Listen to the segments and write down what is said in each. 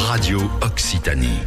Radio Occitanie.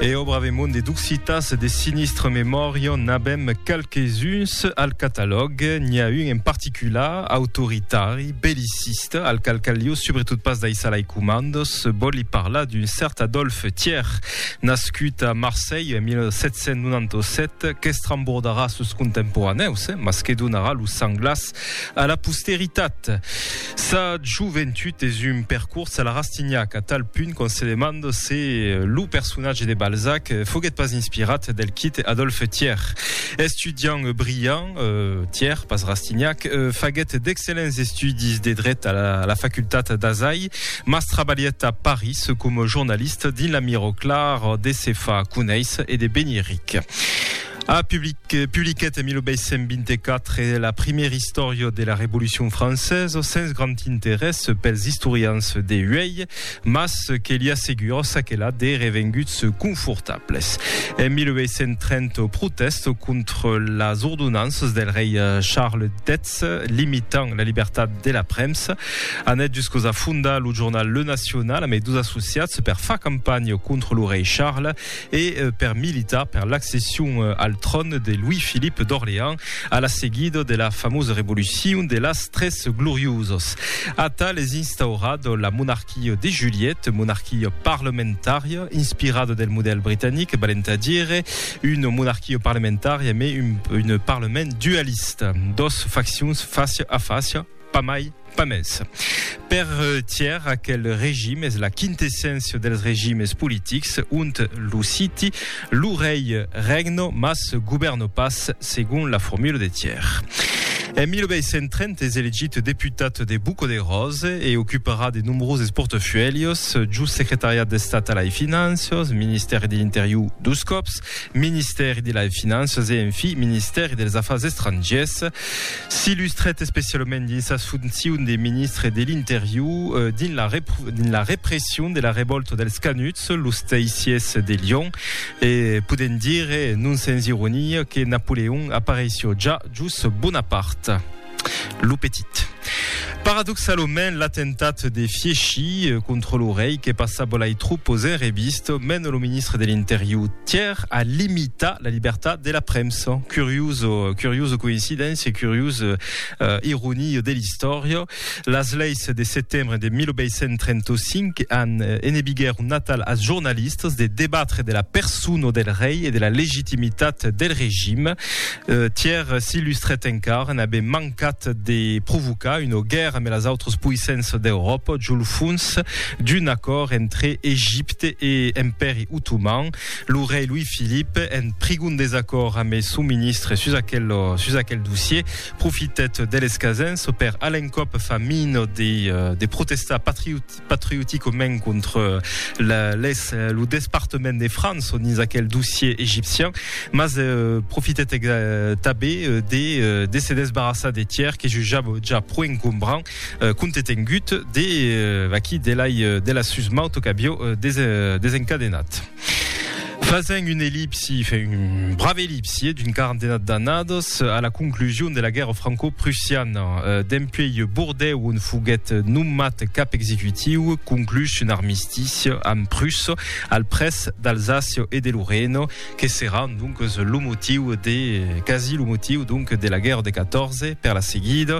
E au bravemont de d'occitas de sinistre memòria n'abem qualques uns al catalòg. N'hi a un en particular, autoritari, belliciste, al qual caliu, sobretot pas d'aissar les comandos, voli parlar d'un cert Adolphe Thiers. Nascut a Marselh en 1797, qu'estrembordarà sos contemporanèus, mas que donarà lo sang glas a la posteritat. Sa joventut es un percors a la Rastignac, a tal punt qu'on se demanda se lo personatge de Balzac foguèt pas inspirat del quite Adolphe Thiers. Estudiant brillant, Thiers, pas Rastignac, faguèt d'excellents estudis de dret a la facultat d'Azai. Mas trabalhèt a París coma jornalista dins la Mirror Clar de se far conéisser e de venir ric. A public, publiquèt en 1824 la primièra istòria de la Revolucion Francesa sens grand interès pels istorians de uèi, mas que li assegura çaquelà de revenguts confortables. En 1830 protèsta contra las ordonanças del rei Charles X Sòrres, limitant la libertat de la premsa. Anèt juscos a fondar lo jornal Le Nacional amé dos associats per far campanha contra lo rei Charles e per militar per l'accession al tròn de Louis-Philippe d'Orléans a la seguida de la famosa revolucion de las tres gloriosas. Atal es instaurat la monarquia de Juliette, monarquia parlamentària inspirada del modèl britanic, valent a dire Una monarquia parlamentària mai un parlament dualista, dos faccions fàcia a fàcia, pas mai, pas mès. Per Thiers, aquel regim es la quintesséncia dels regimes politics, ont lo citi, lo rei regno, mas govèrno pas, segon la formula de Thiers. En 1830 es elegit deputat de Buco de Rose e ocuparà de nombroses portafuèlhos, just secretariat d'Estat a lai Finanças, ministèri de l'Interior, Dos còps, Ministèri de las Finanças e, enfin, Ministèri dels Afars Estrangièrs. S'illustrèt especialament dins sas foncions de ministre de l'Interior dins la dins la repression de la revòlta dels Canuts, los Teissiers de Lyon, e podèm dire, non sens ironia, que Napoleon apareissiá ja jos Bonaparte. Lo petit. Paradoxalament, l'atemptat de Fieschi contra lo rei que passava lai trop o zèr e vist, mena lo ministre de l'Interior Thiers a limitar la libertat de la premsa. Curioso, curioso coincidéncia, curios uh, ironia de l'istòria. Las leis de setembre de 1835 an enebiguèr un natal als jornalistas de debatre de la persona del rei e de la legitimitat del regime. Tièr s'ilustrèt encara, n'avè mancat de provocar una guèrra me las autras poissenças d'Euròpa jo lo fons d'un acòrd entre Egipte e Empèri Otoman. Lo rei Louis-Philippe, en prigon desacòrd amé son ministre sus aquel sus aquel dossier, profitèt de l'escasença per a l'encòp fa mina de de protestar patriot patrioticament contra la, les, lo despartament de France on is aquel dossier egipcian, mas eh, profitèt ex, tabé de, de se desbarrassar de Thiers que jujava ja pro encombrant, eh, compte tengut de, eh, vaquí, de l'ai, de la susmauta qu'avió des, desencadenat. Fasent un ellipsi, un brave ellipsi d'un quarantenat d'annadas a la conclusion de la guèrra franco-prussiana, dempuèi Bordèu on foguèt nomat cap executiu, conclús un armistici amb Prussa al près d'Alsàcia e de Lorena, que serà donques lo motiu de, quasi lo motiu donc, de la guèrra de 14 per la seguida.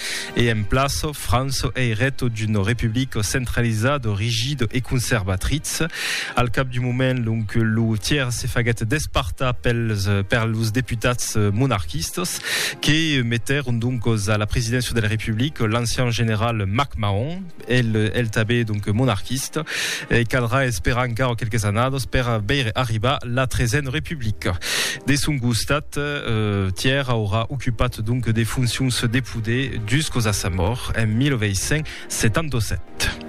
E en plaço, Franço ei reto d'uno republico centralizado, rigido e conservatritz. Al cap d'un moment, l'oncle Loutier se faguèt despartar pels per los deputats monarquistas, que metèron doncos a la presidéncia del republic l'ancian general MacMahon, El tanben donc monarquista. Caldrà esperar encara quelques annadas per veire arribar la Tresen Republica. De son costat, Tièr aurà ocupat donc de foncions de poder juscos a sa mòrt en 1877.